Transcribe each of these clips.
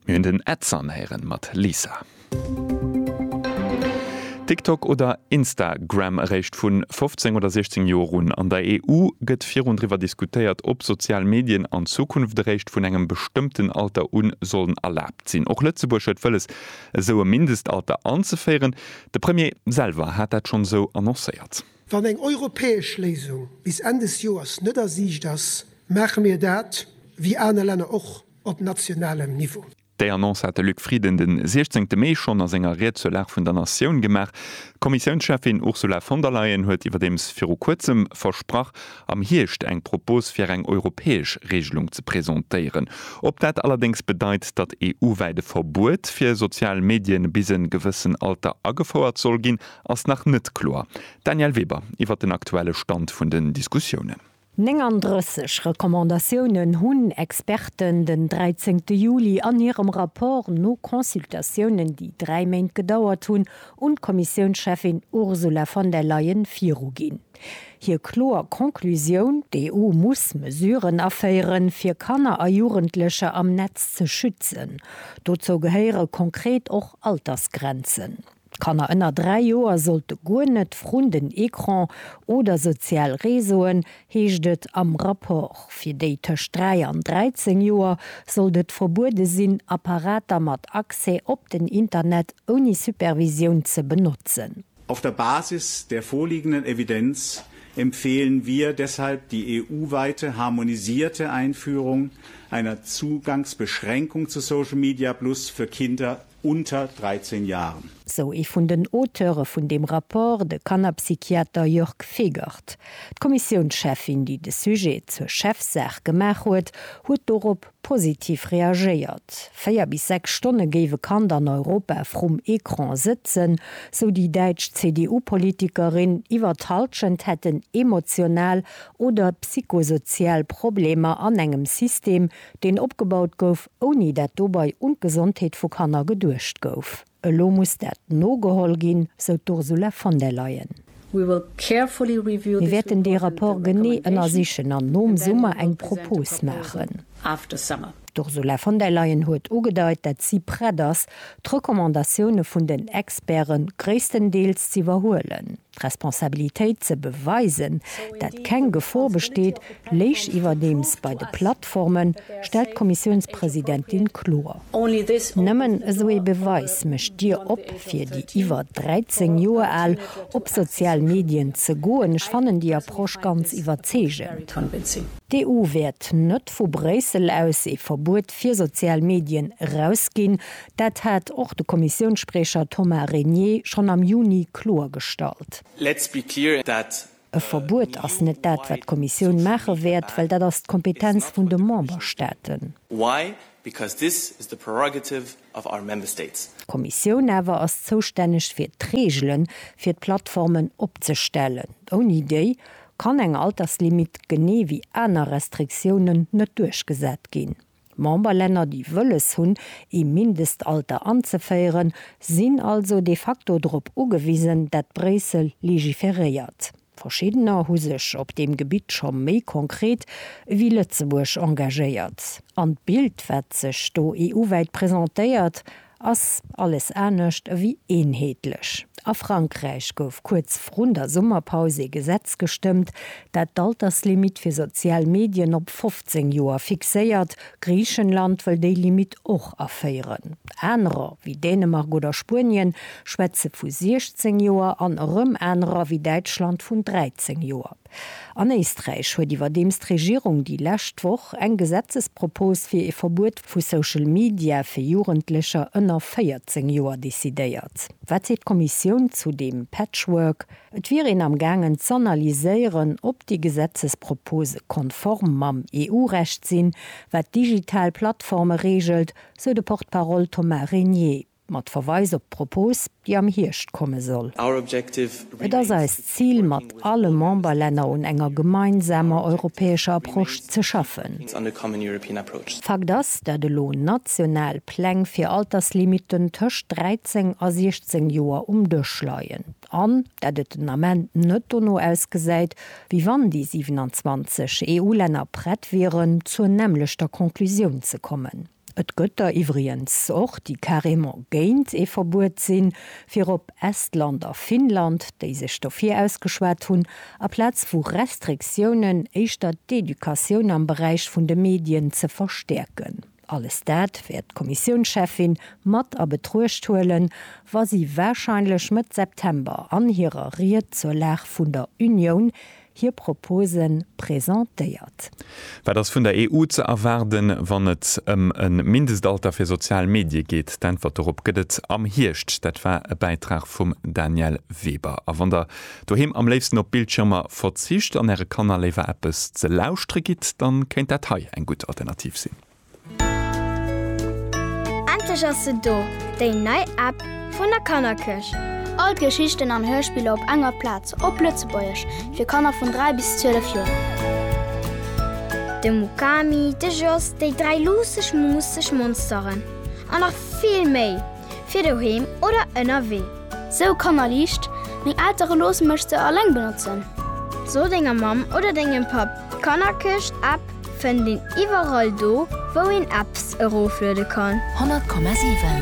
Mir hunn den Ed Sun héieren mat Lisa. TikTok oder Insta Gram eréischt vun 15 oder 16 Joer un. An der EU gëtt virun driwwer diskutéiert op sozial Medien an Zukunft eréischt vun engem bestëmmten Alter un sollen erlaabt sinn. Och Lëtzebuerg huet wëlles esou e Mindestalter anzeféieren. De Premier selwer hat dat schonn esou annoncéiert. Wann eng europäesch Léisung bis Enn des Joers net a Siicht ass, maache mir dat, wéi aner Länner och, op nationalem Niveau. Déi Annonce hat de Luc Frieden de 16 Mee schonn a senger Ried zur Lag vun der Natioun gemaach. D'Kommissiounscheffin Ursula von der Leyen huet iwwerdeems viru Kuerzem versprach, am Hierscht eng Propos fir eng europäesch Reegelung ze presentéieren. Ob dat allerdéngs bedeit, datt EU-wäit e Verbuet fir sozial Medien bis en gewëssen Alter agefouert soll ginn, ass nach net kloer. Danièle Weber iwwert den aktuelle Stand vun den Diskussiounen. 39 Recommandatiounen hunn Experten den 13 Juli an hirem Rapport no Consultatiounen, déi dräi Méint gedauert hunn, un d'Kommissiounscheffin Ursula von der Leyen viruginn. Hir kloer Conclusioun, D'EU muss Mesuren aféieren, fir Kanner a Jugendlecher am Netz ze schützen. Dozou gehéiere konkret och Altersgrenzen. Kanner ënner 3 Joer sollte guer net vrun den Ecran oder sozial Réseauen, heescht et am Rapport. Fir déi tëscht 3 an 13 Joer sollt et verbuede sinn, Apparater mat Accès op den Internet ouni Supervisioun ze benotzen. Auf der Basis der vorliegenden Evidenz empfehlen wir deshalb die EU-weite harmonisierte Einführung einer Zugangsbeschränkung zu Social Media Plus für Kinder unter 13 Jahren. Sou ee vun den Auteure vun deem Rapport, de Kannerpsychiater Jörg Fegert. D'Kommissiounscheffin, déi de Sujet zur Chefsaach gemaach huet, huet dorop positiv reagéiert. Véier bis sechs Stonne géif e Kand an Europa vrum Ecran sëtzen, sou déi däitsch CDU-Politikerin. Iwwer d'Hallschent hätten emotional oder psychosozial Problemer an engem System, deen opgebaut gouf, ouni dat dobei un d'Gesondheet vu Kanner geduecht gouf. Elo muss dat nogeholl ginn, sou d'Ursula von der Leyen. Mir wäerten dee Rapport genee ënnersichen an nom Summer eng Propos maachen. D'Ursula von der Leyen huet ugedeit, dat si prett ass, d'Recommandatioune vun den Experte gréisstendeels z'iwwerhuelen. D'Responsabilitéit ze beweisen, dat keng Gefor besteet, léich iwwerdeems bei de Plattformen, stellt d'Kommissiounspresidentin kloer. Nëmmen esou ee Beweis mécht d'Dier op, fir déi iwwer 13 Joer al op sozial Medien ze goen. Ech fannen déi Approche ganz iwwerzeegend. D'EU wäert net vu Bréissel aus ee Verbuet fir sozial Medien erausginn. Dat hat och de Kommissiounsspriecher Thomas Régnier schonn am Juni kloergestallt. Let's be clear that. E Verbuet ass net dat, wat d'Kommissioun maache wäert, well dat ass d'Kompetenz vun de Memberstaaten. Why? Because this is the prerogative of our Member States. D'Kommissioun awer ass zoustänneg fir d'Reegele fir d'Plattformen opzestellen. Ouni déi kann eng Alterslimit, genee wéi aner Restriktiounen, net duerchgesat ginn. D'Memberlänner, déi wëlles hunn, ee Mindestalter anzeféieren, sinn also de facto drop ugewisen, dat Bréissel legiferéiert. Verschiddener hu sech op deem Gebitt scho méi konkret ewéi Lëtzebuerg engagéiert. An d'Bild, wat sech do EU-wäit presentéiert, Ass alles anescht ewéi eenheetlech. A Frankräich gouf kuerz vrun der Summerpaus ee Gesetz gestëmmt, dat d'Alterslimitt fir sozial Medien op 15 Joer fixéiert. Griichenland wëll déi Limitt och aféieren. Anerer, wéi Dänemark oder Spuenien, schwätze vu 16 Joer an erëm anerer, wéi Däitschland, vun 13 Joer. An Éisträich huet iwwerdeems d'Regierung déi lescht Woch eng Gesetzespropos fir ee Verbuet vu Social Media fir Jugendlecher ënner 14 Joer decidéiert. Wat seet d'Kommissioun zu deem Patchwork? Et wier een am gaangen z'analyséieren, ob déi Gesetzespropose konform mam EU-Recht sinn, wat digital Plattforme reegelt, sou de Porte-parole Thomas Régnier. Mat Verweis op d'Propos, déi am Hierscht komme soll. Et ass eist Zil, mat alle Memberlänner un enger gemeinsamer europäescher Approche ze schaffen. Fakt ass, dat elo national Pläng fir Alterslimiten tëscht 13 a 16 Joer um Dësch leien an dat et den Ament net dono ausgesäit, wéi wann déi 27 EU-Länner prett wieren, zur nämmlechter Conclusioun ze kommen. Et gëtt der iwwrigens och, déi carrément géint ee Verbuet sinn, virop Estland a Finnland, déi sech dofir ausgeschwat hunn, aplaz vu Restriktiounen éischter d'Educatioun am Beräich vun de Medien ze verstäerken. Alles dat wäert d'Kommissiounscheffin mat a Betruecht huelen, wa si warscheinlech Mëtt September an hirer Ried zur Lag vun der Unioun, hir Propose presentéiert. Wat ass vun der EU ze erwaarden, wann et ëm e Mindestalter fir sozial Medie geet? D'Äntwert dorop gëtt et am Hierscht. Dat war e Bäitrag vum Danièle Weber. A wann der doheem am léifsten op Bildschirmer verzicht an äre Kanner léiwer eppes ze lauschtere gitt, da kéint dat hei eng gutt Alternativ sinn. Endlech ass se do, déi nei App vun der Kannerkirch! All d'Geschichten an Hörspiller op enger Plaz, op Lëtzebuergesch, fir Kanner vun 3 bis 12 Joer. De Mukami, de Jos, déi dräi luusseg, muusseg Monsteren an nach vill méi! fir doheem oder ënnerwee. Sou Kannerliicht, Meng Eltere loosse mech se alleng benotzen. So denger Mamm oder dengem Papp, d'Kannerkëscht App fënnt een iwwerall do, wou een Apps erofluede kann. 100,7.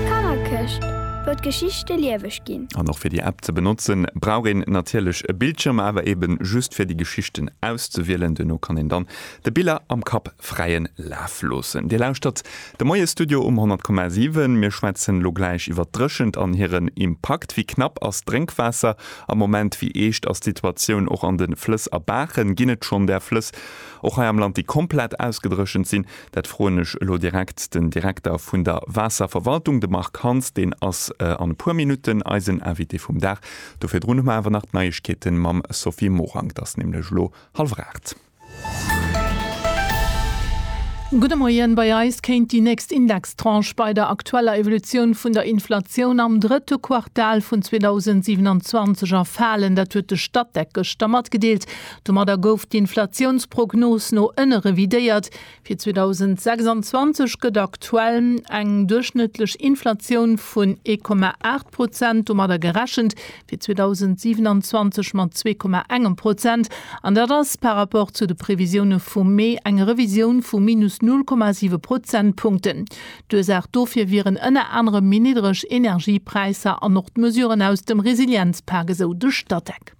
D'Kannerkëscht, wou d'Geschichte lieweg ginn. An och fir déi App ze benotzen, brauch een natierlech e Bildschirm, awer eben just fir déi Geschichten auszewielen. Duerno kann een dann de Biller am Kapp fräien Laf loossen. Dir lauschtert De Moie-Studio um 100,7. Mir schwätzen elo gläich iwwer d'Dréchent an hiren Impakt. Wéi knapp ass d'Drénkwaasser am Moment? Wéi eescht ass d'Situatioun och an de Flëss a Baachen? Ginn et schonn där Flëss och hei am Land, déi komplett ausgedréchent sinn? Dat froen ech elo direkt den Direkter vun der Waasserverwaltung, de Marc Hans. Deen ass an e puer Minutten eisen Invité vum Dag. Do virdrun hu mer awer nach d'Neiegkeete mam Sophie Morang. Et ass nämlech elo hallwer aacht. Gudde Moien, Bei eis kéint déi nächst Indextranche bei der aktueller Evolutioun vun der Inflatioun am drëtte Quartal vun 2027 erfalen. Dat huet de Statec gëschter matgedeelt. Domadder gouf d'Inflatiounsprognos no ënne revidéiert. Fir 2026 gëtt aktuell eng duerchschnëttlech Inflatioun vun 1,8 Prozent domadder gerechent, fir 2027 mat 2,1 Prozent, an dat ass par rapport zu de Previsioune vum Mee eng Revisioun vu minus 0,7 Prozentpunkten. D'Ursaach dofir wieren ënner anerem méi niddreg Energiepräisser an och d'Mesuren aus dem Resilienzpak, esou de Statec.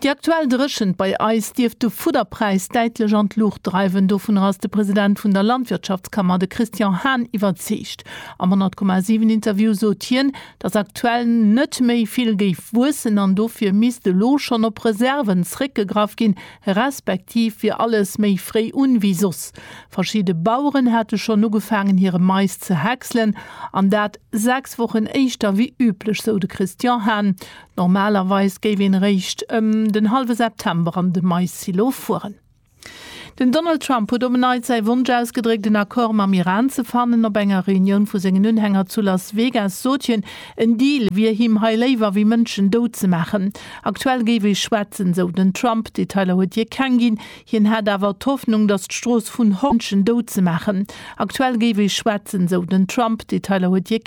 Déi aktuell Dréchent bei eis dierft de Fudderpräis däitlech an d'Luucht dreiwen. Dovunner ass de President vun der Landwirtschaftskammer, de Christian Hahn, iwwerzeegt. Am 100, 7 Interview sot hien, datt aktuell net méi vill géif wuessen an dofir misst elo schonn op Reserven zréckgegraff ginn, respektiv wier alles méi fréi un wéi soss. Verschidde Baueren hätte schonn ugefaangen hire Mais ze häckselen an dat 6 Wochen éischter wéi üblech, sou de Christian Hahn. Normalerweis géif een eréischt ëm den hallwe September an de Maissilo fueren. Den Donald Trump huet op en Neits säi Wonsch ausgedréckt, en Accord mam Iran ze fannen. Op enger Reunioun vu sengen Unhänger zu Las Vegas sot hien, en Deal wier him hei léiwer wéi Mënschen dout ze maachen. Aktuell géif ee schwätzen, sou den Trump. Detailer huet hie keng ginn. Hien hätt awer d'Hoffnung, datt d'Strooss vun Hoffnung op Fridden géif maachen. Aktuell géif ee schwätzen, sou den Trump. Detailer huet hie keng.